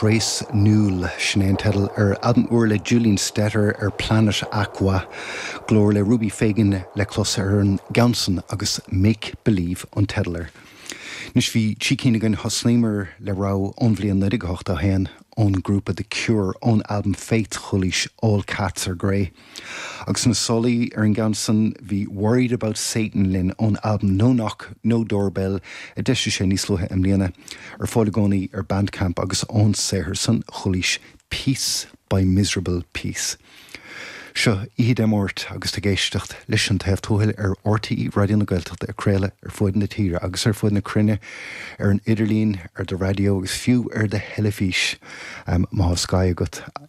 Trace Newell. Sin é an teideal ar albam úr le Julian Stetter ar Planet Aqua. Glór le Ruby Fagan le clos ar an gceann san agus Make Believe an teideal air. Anois bhí trí cinn againn. Thosnaíomar le rogha ón bhliain 1981, ón ngrúpa The Cure, ón albam Faith, chualaís All Cats Are Grey. Agus sna sálaí ar an gceann san, bhí Worriedaboutsatan linn ón albam No Knock, No Doorbell a d'eisíodh níos luaithe i mbliana, ar fáil i gcónaí ar Bandcamp, agus ón saothar san chualaís 'Piece By Miserable Piece' Seo oíche Dé Máirt agus tú ag éisteacht leis An Taobh Tuathail ar RTÉ Raidió na Gaeltachta ag craoladh ar fud na tíre agus ar fud na cruinne ar an idirlíon, ar do raidió agus fiú ar do theilifís má tá Sky agat.